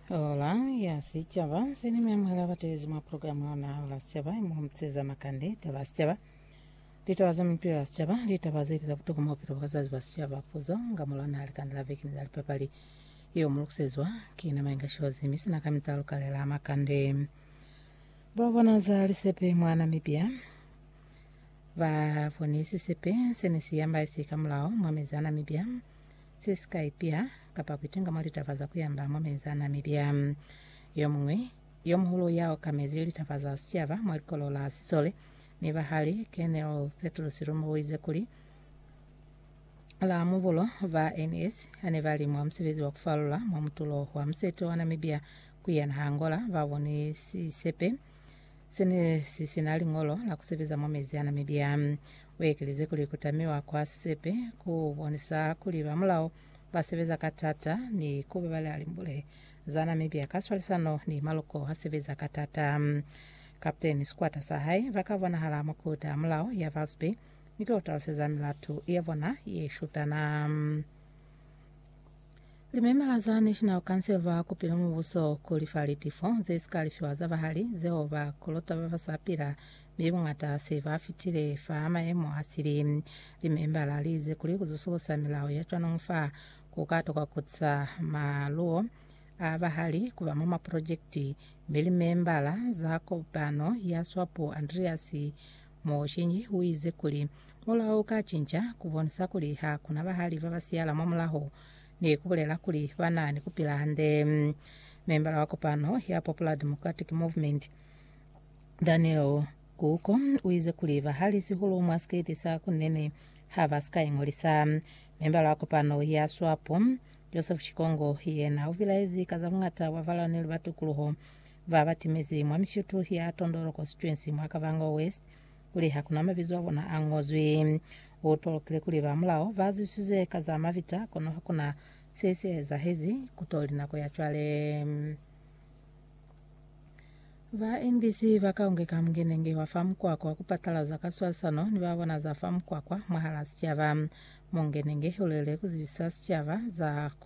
Ola ya Sicaba se ni miamuhela batelezi mwa programu ya ona Ola ya Sicaba imuhumuteza makande, taba ya sicaba, litaba za mipilo ya sicaba, litaba zeli za butokwa mwa bupilo bwa bazazi ba sicaba, puzo nga mulwana ha likanda la veki ni za lipapali. Yeo mu lukusezwa ki na Mainga Shozi mi sina ka mitalo kalela a makande. Bo bona za lisepe mwa Namibia ba boni sisepe se ne si yambaisi ka mulao mwa mezi a Namibia. ze si ka ipya kapa ku itinga mwa litaba za ku yamba mwa mezi a n'a mibya. Yo muñwi yo muhulu ya okamezi litaba za sicaba mwa likolo la sisole ni bahali, Colonel Petrus Lumbu, o ize kuli, La mubulo, ba NS ha ne ba li mwa musebezi wa ku falula mwa mutulo wa musete wa Namibia ku ya naha Angola, ba boni sisepe Se ne si si na liñolo la ku sebeza mwa mezi a na mibya. U ekelize kuli ku tamiwa kwa sisepe ku bonisa kuli ba mulao ba sebeza ka t'ata ni ku babala limbule za na mibya ka swalisano ni maloko a sebeza ka t'ata. Kaputeni ni sikwata sa hae ba ka bonahala mwa kota ya mulao ya Valsby ni ku yo taluseza milatu ya bona ye shutana. Limemala za National Council va kupile mubuso ku lifa litifo ze si ka lifiwa za bahali zeo ba kolota ba ba sa pila mi buñata se ba fitile fa mayemo a sili. Limembala li ize kuli ku zusulusa milao ya cwanong fa ku ka tokwa ku tisa maluo a bahali ku ba mwa maprojekiti, mi limembala za kopano ya swapo Andreas Mooshinyi uize kuli, Mulao uka cinca, kubonisa kuli ha kuna bahali baba siyala mwa mulaho, ni kubulela kuli bana ni kupila hande. Membala wa kopano ya Popular Democratic Movement, Daniel Guko, uize kuli bahali sihulu mwa sikiti sa kunene haba sika ingolisa. Membala wa kopano ya Swapo, Joseph Chikongo, yena ubilaezi ka za buñata bwa balwaneli ba tukuluho Ba ba timezi mwa mishutu ya Tondolo Constituency mwa Kavango West kuli ha ku na mabizo a bona a ngozwi. U tolokile kuli ba mulao ba zwisizwe ka za mabita kono ha ku na se si ezahezi ku to li nako ya cwale. Ba NBC ba Kaonge ka Mungenenge wa fa Mukwakwa ku patalaza ka swalisano ni ba bona za fa Mukwakwa mwahal'a sicaba. Mungenenge u lwele ku zibisa sicaba za ku